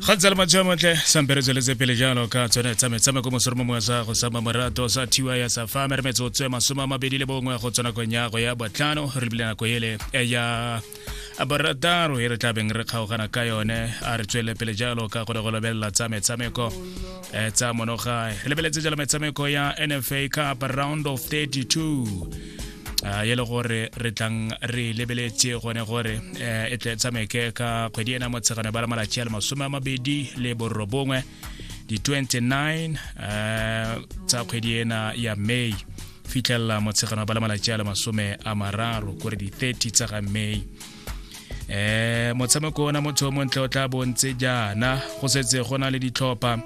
ga ntse le matsheo motle sampere tsweletse pele jalo ka tsone tsa metshameko mosoro mo mongwe sa go sama morato sa thiwa ya sa fa mere metsotso ya masome a mabedi le bongwe go tswa nakong ya go ya botlhano re bile nako ele ya barataro e re tlabeng re kgaogana ka yone a re tswelele pele jalo ka go le go lebelela tsa metshameko tsa monogae re lebeletse jalo metshameko ya nfa cup round of 32 a e le gore re tlang re lebeletse gone gore eh, e tle tshameke ka kgwedi ena motshegano ba la malatsi a le masome a mabedi le borobongwe di-29 eh, tsa kgwedi ena ya may fitlhelela motshegano ba la malatsi a le masome a mararo kore di-30 tsa ga may eh motshameko ona motho o montle o tla bontse jaana go setse go na le ditlhopha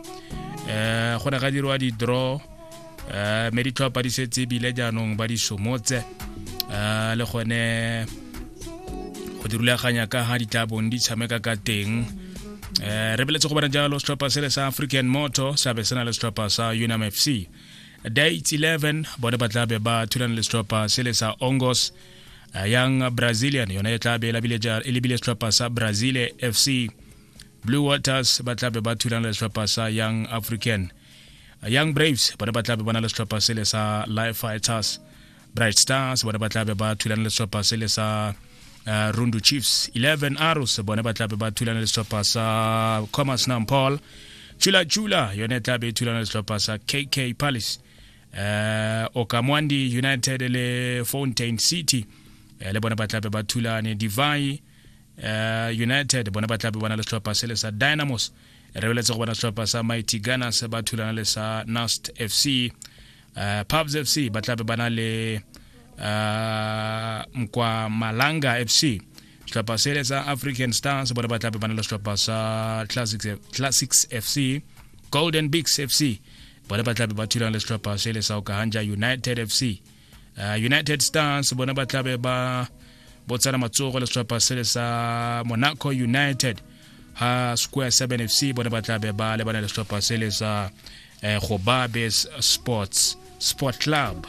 eh go ne ga dirwa di-draw um mme ditlhopha di setse ebile jaanong ba di somotse um le gone go di rulaganya ka ga di tla bong di tshameka ka teng um re beletse go bona jalo setlhopha sele sa african moto sa be se na le setlhopha sa unam f c date 11 bone ba tla be ba thulana le setlhopha sele sa ongos uh, young brazilian yone e tla be e lebile setlhopha sa brazil fc blue waters ba tla be ba thulana le setlhopha sa young african young braves bone ba tlabe ba na le setlhopha sele sa life fighters bright stars bone ba tlabe ba thulana le setlhopha sele sa uh, rundu chiefs 11 arrows bone ba tlabe ba thulana le setlhopha sa commerce nampol chula chula yone e tlabe e thulana le setlhopha sa kk palace uh, okamwandi united le fountain city uh, le bone ba tlabe ba thulane divai uh, united bone ba tlabe bona le setlhopha se le sa dynamos re beletse go bona setlhopha sa mighty gunners ba thulana le sa nast fc uh, eh, pubs fc ba tlabe bana le uh, mkwa malanga fc setlhopha se le sa african stars bone ba tlabe bana le setlhopha sa classics, classics fc golden bigs fc bone ba tlabe ba thulana le setlhopha se le sa okahanja united fc uh, united stars bona ba tlabe ba botsana matsogo le setlhopha sele sa monaco united ha square 7 fc bona ba tlabe ba lebana le setlhopha sele sa eh, gobabes sports sport club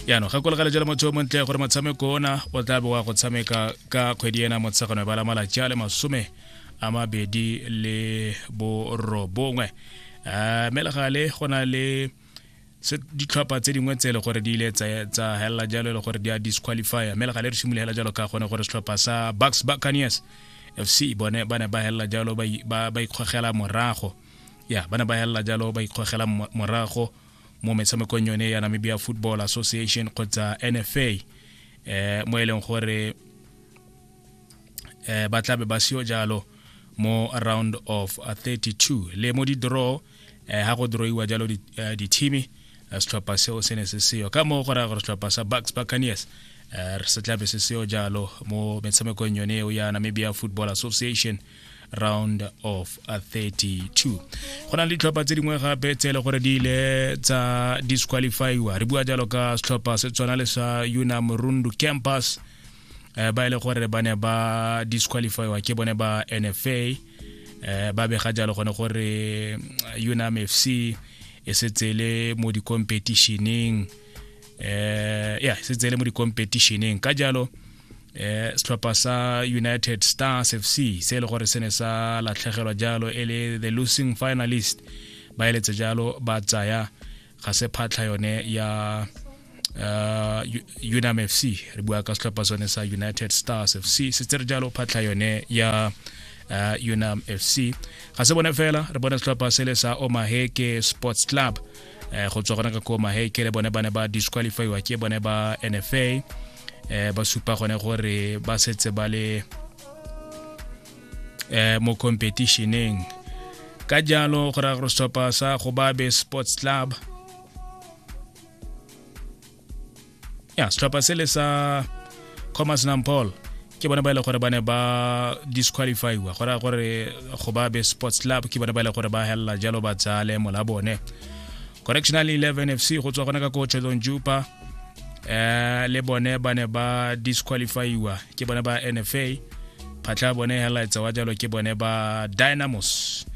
yaanong ga kolegele jalo motho o montle gore motshameko ona o tla be wa go tshameka ka kgwedi ena motshegano ba la malatsi a le masome a mabedi le borobongwe um eh, melegale go na le se ditlhopha tse dingwe tse e le gore di ile tsa helela jalo e le gore di a disqualifya mme le gale re simologela jalo ka gone gore setlhopha sa bucks buccaneers fc bone ba ne ba helela jalo ba ikgogela morago ya ba ne ba helela jalo ba ikgogela morago mo metshamekong yone ya namibia football association kgotsa nfa eh mo e leng gore eh ba tlabe ba seo jalo mo round of 32 le mo di-draw eh, ha go droiwa jalo eh, dithimi eh, setlhopha seo se ne se seyo ka moo go raya gore setlhopha sa bucks buccaneers re se tlabe se seyo jalo mo metshamekong yone eo ya namibia football association round of 32 go na le ditlhopha tse dingwe gape tse e le gore di ile tsa disqualifyiwa re bua jalo ka setlhopha se tshwana le sa unam rundu campus ba e le gore ba ne ba disqualifyiwa ke bone ba nfa eh ba bega jalo gone gore eh, unam fc e setse le mo di-competitioneng eh ya e setse le mo di-competitioneng ka jalo eh setlhopha sa united stars fc se e le gore se ne sa latlhegelwa jalo e le the losing finalist ba eletse jalo ba tsaya ga se phatlha yone ya uh, unam fc re bua ka setlhopha sone sa united stars fc se tse re jalo phatlha yone ya uh, unam fc ga se bone fela re bone setlhopha se le sa omaheke sports club eh, go tswa gona ka ko omaheke le bone ba ne ba disqualifyiwa ke bone ba nfa eh, ba supa gone gore ba setse ba le eh, mo competitioneng ka jalo go raya gore setlhopha sa gobabe sports club ya setlhopha sele sa commerce nampol ke bona ba ile e gore ba ne ba disqualifyiwa go raya gore go ba be sports club ke bona ba ile e gore ba helela jalo ba tsale mola bone correctional 11 fc go tswa gona ka ko chelong jupa eh le bone ba ne ba disqualifyiwa ke bone ba nfa phatlha bone hellaetsa wa jalo ke bone ba dynamos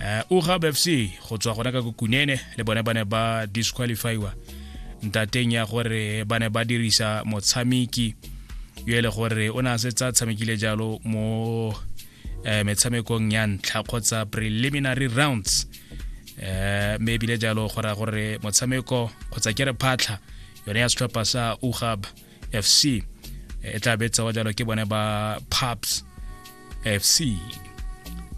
eh ugab fc go tswa gona ka kokunene le bone ba ne ba disqualifyiwa ntateng ya gore ba ne ba dirisa motshameki yo e le gore o ne a setsa tshamekile jalo mo eh, metshamekong ya ntlha kgotsa preliminary rounds eh me bile jalo go raya gore motshameko kgotsa ke re phatlha yone ya setlhopha sa ugab fc e tla betsawa jalo ke bone ba paps fc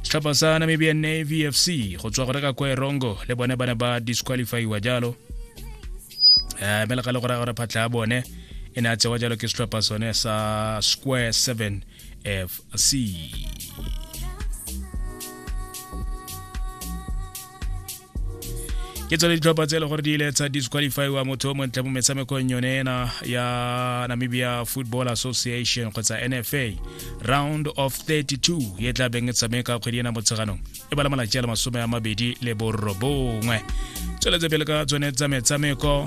setlhopha sa namibian navy fc go tswa go reka kwa erongo le bone ba ne ba disqualifyiwa jalo um mme le ga le go raya gore phatlha ya bone e ne a tsewa jalo ke setlhopha sone sa square seven FC. ke tsone ditlhopha tse e le gore di ile tsa disqualifiwa motho o montle mo metshamekong yone ena ya namibia football association kgotsa nfa round of 32 e tla beng e tshameka kgwedi ena motsheganong e bala malatsi a le masome a mabedi le borobongwe tsweletse pele ka tsone tsa metshameko